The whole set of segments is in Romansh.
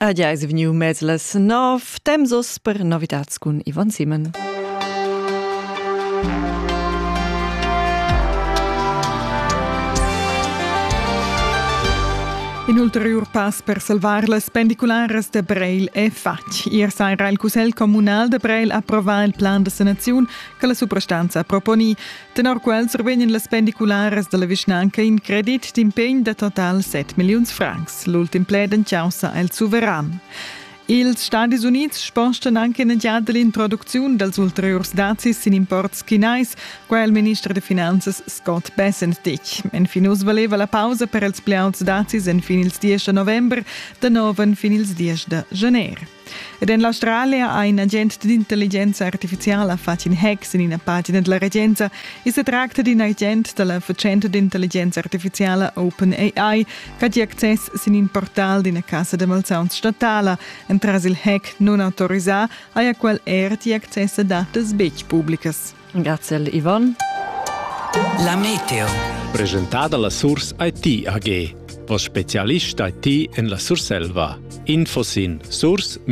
Ad ja es vegniu mez las nov, temps oss per novitats cun Ivan Simon. In ulteriur pass per salvar las pendicularas de Breil è fatg. Ier saira il Cussegl comunal de Breil approva il plan de sanaziun che la suprastanza proponì. Tenor quel survegnan las pendicularas dalla vischnanca in credit d'impegn da total 7 milliuns francs. L'ultim pled en caussa el suveran. Ils Stadis Unids spostan anche in giada l'introducziun dals ulteriurs dazis sin imports chinais, quai il minister da finanzas Scott Bessentich. Enfin uss valeva la pausa per els pli auts dazis en fin ils 10 da november, da nov en fin ils 10 da gener. Ed en l'Australia ha in agent d'intelligenza artifiziala fatg in hack sin ina pagina da la regenza e se tracta d'in agent da la fatschenta d'intelligenza artifiziala OpenAI ch'ha access sin in portal d'ina cassa da malsauns statala. Entras il hack non autorisà haja quel er gì access a datas betg publicas. Grazie al Ivan. La Meteo. Presentada la Source IT AG. Vos specialist IT en la Surselva. Info sin source-it.ch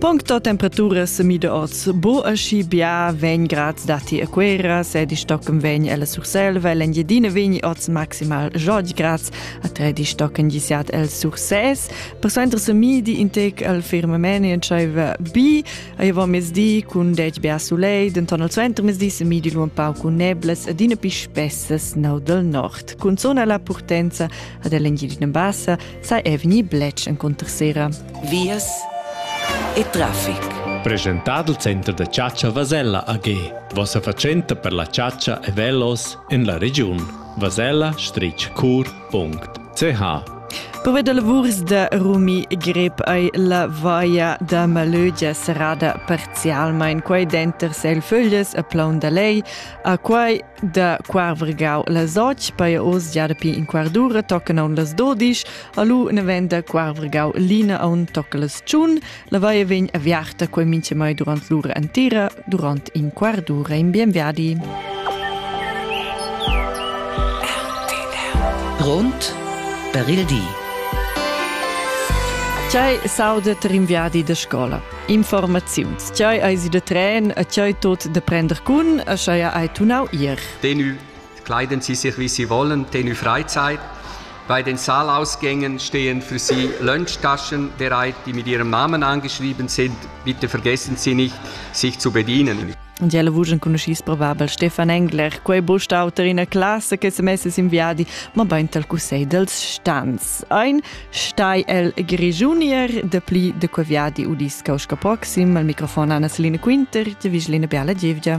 Puncto temperaturas mide oz bo aschi bia vegn grads dati a Quera, se di stocken vegn alla Surselva, l'Engiedina vegni oz maximal jod grads a tre di stocken gisiat el Surses. Per suenter se midi intec al firmamene entscheiva bi Aiva mezdi cun dec bia sulei, denton al suenter mezdi se midi lu un pau cun neblas ed ina pi spessas nau del nord. Cun zona la purtenza ad Elengilina Bassa sai è vegni blec en contersera. Vias e traffic. Presentado il Center da Ciaccia Vasella AG. Vossa fatschenta per la ciaccia e velos en la regiun. Vasella, strich cur, .ch Pove da lavurs da Rumi Grep ei la vaia da Malögia serrada parzialmein quei denter Selföglies e Plaun da Lei, a quei da Quarvergau las och, poi oz gia dapi in quardura toccen aun las dodisch, alu ne venda Quarvergau lina aun tocca las tschun, La vaia vegn aviarta quel minchemai durant l'ura entera, durant in quart d'ura in bien viadi. Grund per il di. Tgei saudet in viadi da scola? Informaziuns. Tgei eis de tren, a tgei tot de prender cun, a schei ai tunau ir. Tenu Kleiden Sie sich, wie Sie wollen, tenue Freizeit. Bei den Saalausgängen stehen für Sie Lunchtaschen bereit, die mit Ihrem Namen angeschrieben sind. Bitte vergessen Sie nicht, sich zu bedienen. Und ella vus enconuschis probabel Stefan Engler, quei bustauter ina classe che se messes in viadi, ma beint al cussegl dels stans. Ein stai el Grigiunier de pli de que viadi udis causka proxim al microfon Anna Celine Quinter, te Vigeline Biala Gievgia.